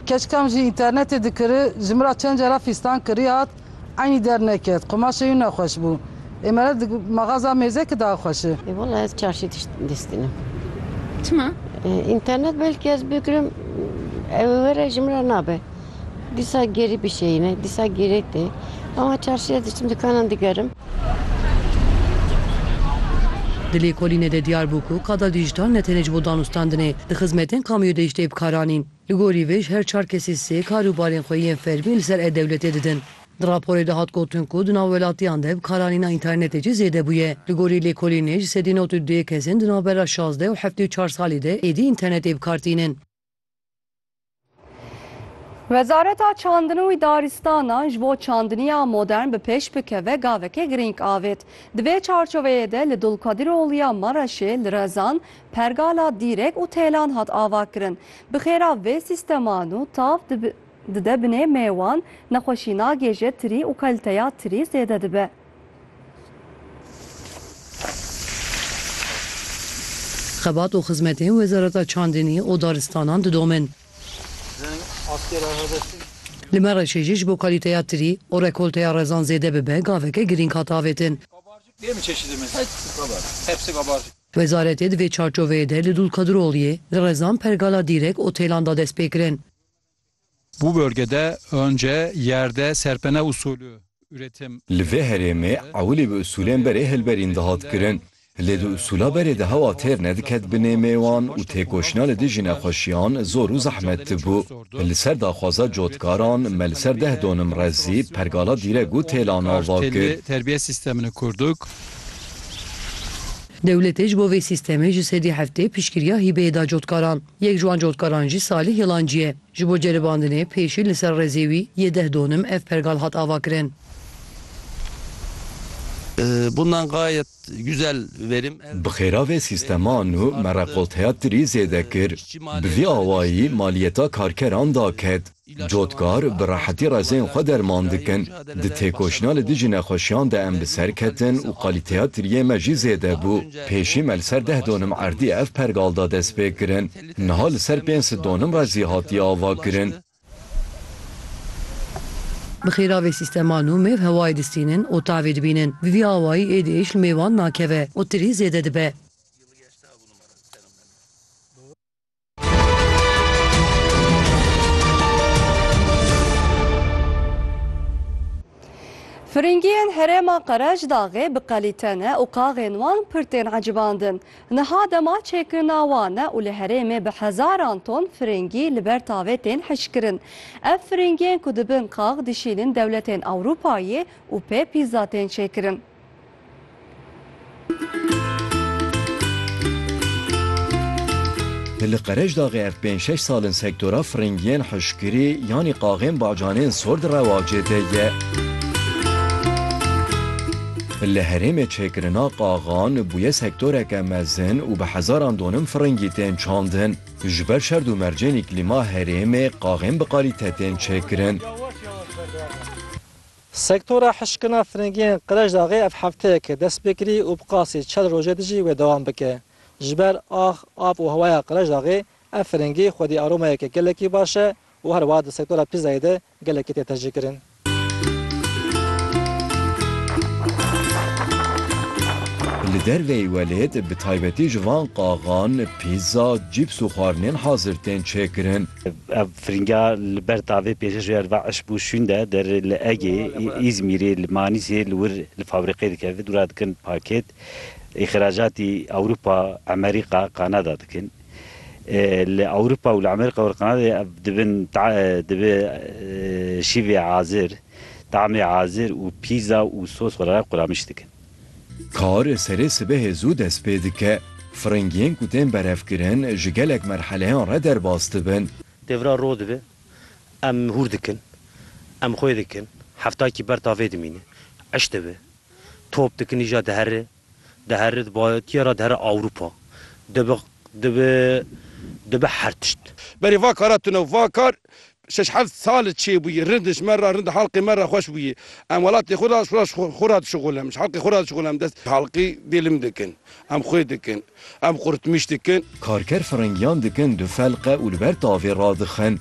Keçikam ji înternetê dikiri, ji min ra çend cara fîstan kirî hat, eynî derneket, qumaşê wî nexweş bû. Ê mere di maxaza mêzekî de axweş e. Ê wela ez çarşî tişt dîstînim. Çima? Înternet belkî ez bigirim ew were ji min re nabe. Dîsa gerî bişeyîne, dîsa gerê tê. Ama çarşî ez diçim dikanan digerim. Di lêkolînê de diyar bû ku qada dîjital ne tenê ji bo danûstandinê, di xizmetên kamûyê de jî tê bikaranîn. Li gorî vê ji her çar kesê sê kar û barên xwe yên fermî li ser e-dewletê didin. Di raporê de hat gotin ku di nav welatiyan de bikaranîna înternetê jî zêde bûye. Li gorî lêkolînê ji sedî nod û duyê kesên di navbera şazdeh û heftê û çar salî de êdî înternetê bi kar tînin. Wezareta Çandin û Darîstanan ji bo çandiniya modern bi pêş bikeve gavekê girîng avêt. Di vê çarçoveyê de li Dulkadir Oliya Mereşê, li Rezan, Pergala Dîrek û Têlan hat avakirin. Bi xêra vê sîsteman û tav dide binê mêwan, nexweşî nagêje tirî û kalîteya tirî zêde dibe. Xebat û xizmetên Wezareta Çandinî û Daristanan didomin. Li Mereşê jî ji bo kalîteya tirî û rekolteya rezan zêde bibe gaveke girîng hate avêtin. Wezaretê di vê çarçoveyê de li Dulkadroliyê li Rezan pergala dîrek otêlan da destpêkirin. Bu bölgede önce yerde serpene usulü üretim. Li vê herêmê ewilî bi usulên berê hilberîn dihat kirin. Lê di usula berê de hewa têr nediket bi nêmê wan û têkoşîna li dijî nexweşiyan zor û zehmet dibû. Li ser daxwaza cotkaran me li ser deh donim rezî pergala dîrek û têlan ava kir. Terbiye sistemini kurduk. Dewletê ji bo vê sistemê ji sedî heftê piştgiriya hîbeyê da cotkaran. Yek ji wan cotkaran jî Salîh Yelancî ye. Ji bo ceribandinê pêşî li ser rêzê wî yê deh donim ev pergal hat avakirin. Bi xêra vê sîsteman û me rekolteya tirî zêde kir. Bi vî awayî maliyeta karkeran daket. Cotkar bi rehetî rezên xwe derman dikin. Di têkoşîna li dijî nexweşiyan de em bi ser ketin û qalîteya tiriyê me jî zêde bû. Pêşî me li ser deh donum erdî ev pergal da destpêkirin. Niha li ser pênc sed donum re zî hatiye avakirin. Bi xêra vê sîstema nû mêv hewayê distînin û tavê dibînin. Bi vî awayî êdîş li mêvan nakeve û tirî zêde dibe. Firingiyên herêma Qerecdağê bi qelîte ne û qaxên wan pir tên ecibandin. Niha dema çêkirina wan e û li herêmê bi hezaran ton firingî li ber tavê tên hişkirin. Ev firingiyên ku dibin qax dişînin dewletên Ewropayê û pê pîza tên çêkirin. Li Qereçdaxê ev pênc şeş sal in sektora firingiyên hişkirî yanî qaxên bacanên sor di rewacê de ye. Li herêmê çêkirina qaxan bûye sektoreke mezin û bi hezaran donim firingî tên çandin. Ji ber şerd û mercên îklîma herêmê qaxên bi qalîte tên çêkirin. Sektora hişkina firingiyên Qirejdaxê ev hefteyeke dest pê kirî û bi qasî çel rojê di jî wê dewam bike. Ji ber ax, av û hewaya Qirejdaxê ev firingî xwedî aromayeke gelekî baş e û her wiha di sektora pîzayê de gelekî tê tecrîkirin. Li derveyî welêt bi taybetî ji van qaxan, pîza, cîps û xwarinên hazir tên çêkirin. Ev firinga li ber tavê pêşeşoya li va iş bû şûn de der li Egê, Îzmîrê, li Manîsê li wir li fabrîqê dikeve dûra dikin pakêt, îxracatî Ewropa, Emerîqa, Kanada dikin. Li Ewropa û li Emerîqa û li Kanadayê ev dibin dibe şîvê azir, tamê azir û pîza û sos xwe re quramiş dikin. Kar serê sibehê zû dest pê dike. Firingiyên ku tên berevkirin ji gelek merheleyan re derbas dibin. Devra roj dibe em hûr dikin, em xwê dikin, heftakî ber tavê dimîne, eş dibe, top dikin îja dihere, dihere di batiya re dihere Ewropa, dibe dibe dibe her tişt. Berê va kara tune û va kar Şeş heft sal çêbûyî rind ji me re rind halqê me re xweş bûyî. Em welatê xwe re xwe re dişuxulem, ji halqê xwe re dişuxulem. Dest. Halqî bêlim dikin, em xwê dikin, em qurtmîş dikin. Karker firingiyan dikin du felqe û li ber tavê radixin.